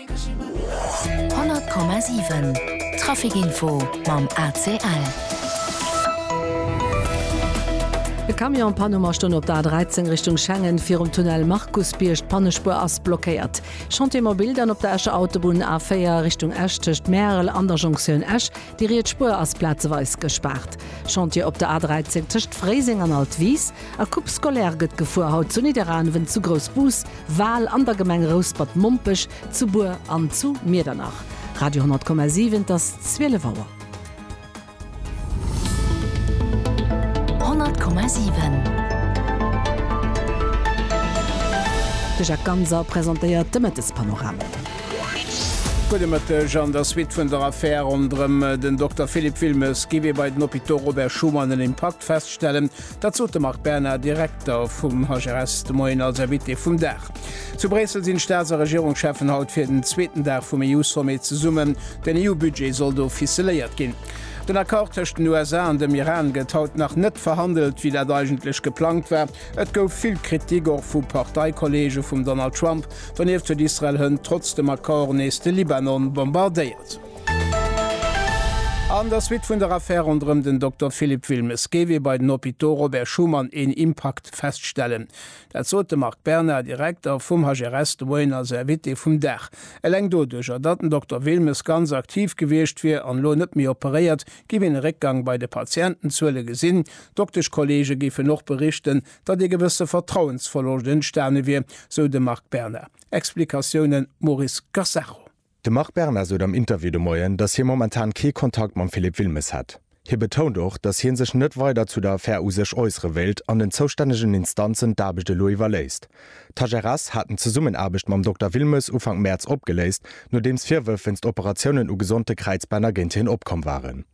100,7 Trafic Info mam ACL. E Camion Panne ma stoung op der A13 Richtung Schengen virum Tunnel Markusbierg. D'Pannespuer ass blockéiert. Chantier mobil dann op der Escher Autobunn A4 Richtung Esch tëscht Märel an der Jonktioun Esch. Déi riets Spuer ass plazeweis gespaart. Chantier op der A13 tëscht Fréiseng an Altwis a Coupe scolaire gëtt gefuer, haut zu Nidderaanwen, zu Groussbus, Wal, an der Gemeng Rouspert-Mompech, zu Bur an zu Miedernach. Radio 10,7 Et ass 12 Auer. 10,7 De Jacques Ganser presentéiert de Mëttespanorama. Gudde Mëtteg. An der Suite vun der Affär ronderëm den Dokter Philippe Wilmes gi mir bei den Hôpitaux Robert Schuman an Impact feststellen. Dat sot de Marc Berna, Direkter vum HRS de Moien als Invité vum Dag. Zu Bréissel sinn d'Staats a Regierungscheffen haut fir den zweeten Dag vum EU-Sommet zesummen. Den EU-Budget soll do ficeléiert ginn. Den Accord tëscht den USA an dem Iran gëtt haut nach net verhandelt, wéi dat eigentlech geplangt war. Et gouf vill Kritik och vu Parteikolleege vum Donald Trump. Donieft huet Israel hënt trotz dem Accord nees de Libanon bombardéiert. An der Suite vun der Affär ronderëm den Dokter Philippe Wilmes géif ee bei den Hôpitaux Robert Schuman een Impakt feststellen. Dat sot de Marc Bernard, Direkter vum HRS, de Moien als Invité vum Dag. Eleng doduercher, datt den Dokter Wilmes ganz aktiv gewiescht wier an elo net méi operéiert, géif een e Réckgang bei de Patientenzuele gesinn. Dokteschkolleege géifen och berichten, datt ee gewësse Vertrauensverloscht entstane wier, sou de Marc Berna. Explikatiounen, Maurice Gassacho. De Marc Berna sot am Interview de Moien, datt hie momentan kee Kontakt mam Philippe Wilmes hätt. Hie betount och, datt hie sech net weider zu der Affär u sech äussere wéilt an den zoustännegen Instanzen d'Aarbecht elo iwwerléisst. D'HRS haten d'Zesummenaarbecht mam Dokter Wilmes Ufank Mäerz opgeléist, nodeems Virwërf wéinst Operatiounen u gesonte Kräizbänner géint hien opkomm waren.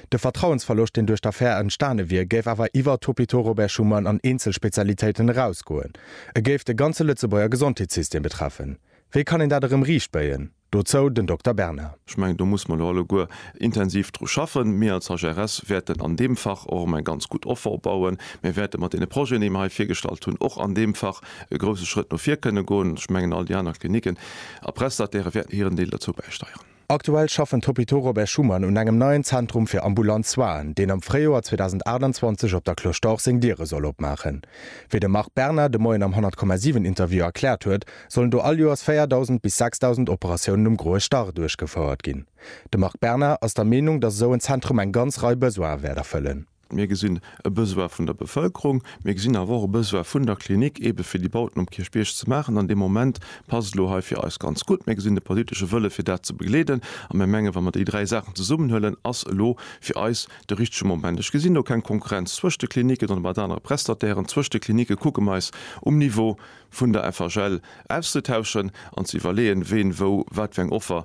De Vertrauensverloscht, deen duerch d'Affär entstane wier, géif awer iwwert d'Hôpitaux Robert Schuman an eenzel Spezialitéiten erausgoen. E géif de ganze Lëtzebuerger Gesondheetssystem betreffen. Wéi kann een dat erëm riichtbéien? Dozou den Dokter Berna. Ech mengen, do muss mer elo alleguer intensiv dru schaffen. Mir als HRS wäerten an deem Fach och erëm eng ganz gutt Offer opbauen. Mir wäerte mat deene Projeten, déi mer hei virgestallt hunn, och an deem Fach e grousse Schrëtt no vir kënne goen. Ech mengen, all déi aner Klinicken a Prestatairë wäerten hiren Deel dozou bäisteieren. Aktuell schaffen d'Hôpitaux Robert Schuman un engem neien Zentrum fir ambulant Soinen, deen am Fréijoer 2028 op der Cloche d'Or seng Diere soll opmaachen. Wéi de Marc Berna de Moien am 100,7 Interview erkläert huet, sollen do all Joers 4.000 bis 6.000 Operatiounen um Groe Stach duerchgefouert ginn. De Marc Berna ass der Meenung, datt esou en Zentrum eng ganz Rei Besoine wäert erfëllen. Mir gesinn e Besoin vun der Bevëlkerung, mir gesinn awer och e Besoin vun der Klinik, eebe fir déi Bauten um Kierchbierg ze maachen. An dee Moment passt et elo hei fir eis ganz gutt. Mir gesinn de politesche Wëlle fir dat ze begleeden a mir mengen, wa mer déi dräi Saachen zesummenhuelen, ass elo fir eis de richtege Moment. Ech gesinn do keng Konkurrenz zwëscht de Kliniken oder mat anere Prestatairen. Zwëscht de Klinicke kucke mer eis um Niveau vun der FHL auszetauschen an ze iwwerleeën, ween wou wat fir eng Offer